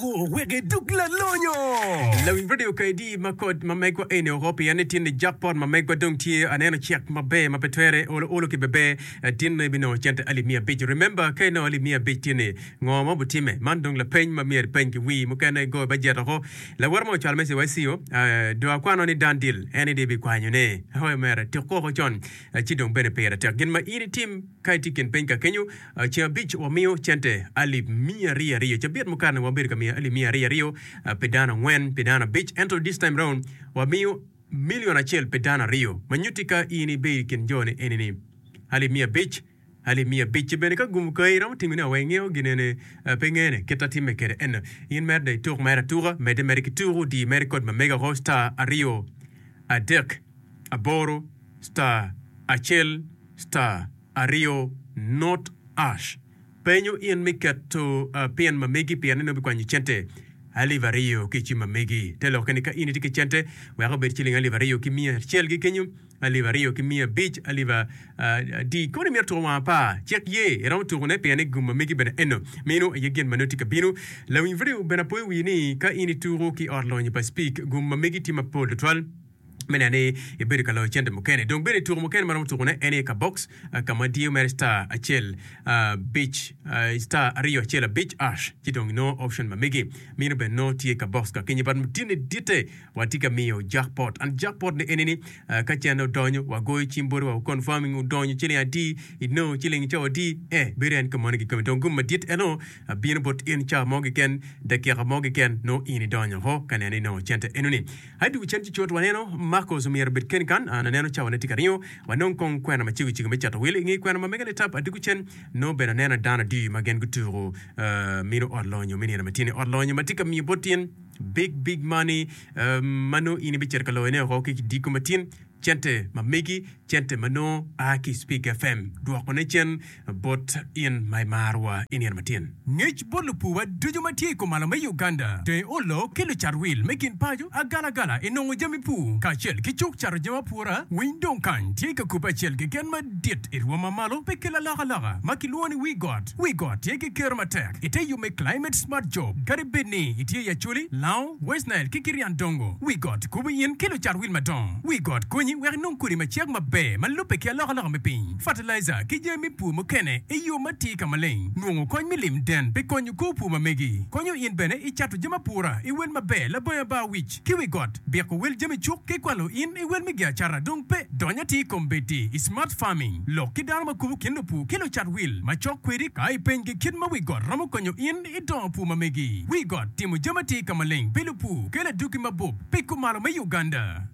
Gu weke duk lalonyo. Lawiny radio kaydi ma kod ma megwa eni oko pia ni tinni jack pot ma megwa dong tye aneno check ma ber ma pe twere olo olo ki beber tinno ibi nongo cente alip miya abic remember ka inongo alip miya abic tinni ngo ma obitime man dong lapeny ma myero ipeny ki wii mukene igo bajet oko lawote ma ocwalo message wa i CIO do akwano ni done deal eni do ibi kwanyo ne hoo mere tuk koko con ci dong bene pire tek gin ma in itim ka itye i kin peny ka kenyo. Ceng abic wamiyo cente alip miya aryo aryo. Cabit mukane wabedo ka miyo alip miya aryo aryo pi dano angwen, pi dano abic. Ento this time round, wamiyo milion acel pi dano aryo. Ma nyutti ka in ibedo i kin jo-ni eni-ni, alip miya abic, alip miya abic. Ci bene ka gumu kayi iromo timi ne awa ingeyo ginene? Pe ingene kit atimme kede eno. In meri dong ituk meri atuka, medde meri ki tuku, di meri kod ma mega ko star aryo adek aboro star acel star. Aryo, Not Ash penyo in me keto pin ma megi pien en nongo bikwanyo cente alip aryo ki ci ma megi. Te lokke ni ka in itye ki cente wek obed ciling alip aryo ki miya acel gi kenyo, alip aryo ki miya abic, alip adi kono imito tuko wang apar, cik ye iromo tuko ne pien ni gum ma megi bene eno. Meno aye gin ma nongo tye ka bino. Lawiny vidio bene apoyo wii ni ka in ituko ki ot lonyo pa Speke gum ma megi tye mapol tutwal. me neno ni ibedo ka loyo cente mukene. Dong bene tuko mukene ma romo tukone en aye ka box ka ma diyo mere star acel abic star aryo acel abic ash ci dong inongo option ma megi. Mino bene nongo tye ka box ka kenyo but mutine ditte watye ka miyo jackpot and jackpot ne enini ka cente odonyo wagoyo cim boti wa confirming odonyo ciling adi inongo ciling co adi eh bedo en ka moni kikome dong gum madit eno bino bot in ca mo keken dakika mo keken nongo in idonyo ho ka neno ni inongo cente enoni. I dye cen cucut, waneno Marcos omyero obed kene kan an aneno cawane tye ka ringo. Wanongo kong kwena ma cegocego me cato wil. I nge kwena ma mege nitap adiko cen, nongo bene aneno dano adir ma gen gutuko mino ot lonyo me nino ma tyen-ni, ot lonyo ma tye ka miyo bot tyen, big, big money, ma nongo in ibicito ka loyone oko ki kidiko ma tyen. Cente ma megi, cente ma nongo a ki i Spig FM, dwokone cen bot in ma imarowa i nino matin. Ngec bot lupuwa ducu ma tye i kumalo me Uganda, deng olo ki lucat wil me gin paco, agalagala i nongo jami pur kacel ki cuk cato jami apura, winy dong kany tye ka kubbe acel keken madit i rwom ma malo pe ki lalokaloka ma kilwongo ni Wii Got. Got. Wi got tye ki ker matek i te yo me Climate Smart Job. Kadi bed ni itye i Acholi, Lao, West Nile, ki Kiriandongo, wi got kubo in ki lucat wil madongo. Wi got konyi wek inong kodi ma cek maber ma lubbe ki alokaloka me piny, fatalaija, ki jami me pur mukene i yo ma atir ka maleng. Nongo kony me lim den pe konyo kor pur ma megi. Konyo in bene i cato jami apura i wel maber labongo Abar wic. ki wi got, biko wel jami cuk ki kwalo in i wel me giacata dong pe. Dony atir i kom bedi i smart farming, lok ki dano ma kubo kin lupur ki lucat wil ma cok kwedi ka ipenygi kit ma wi got romo konyo in i dongo pur ma megi. Wi got timo jami atir ka maleng pi lupur kelo adwogi mabup pi kumalo me Uganda.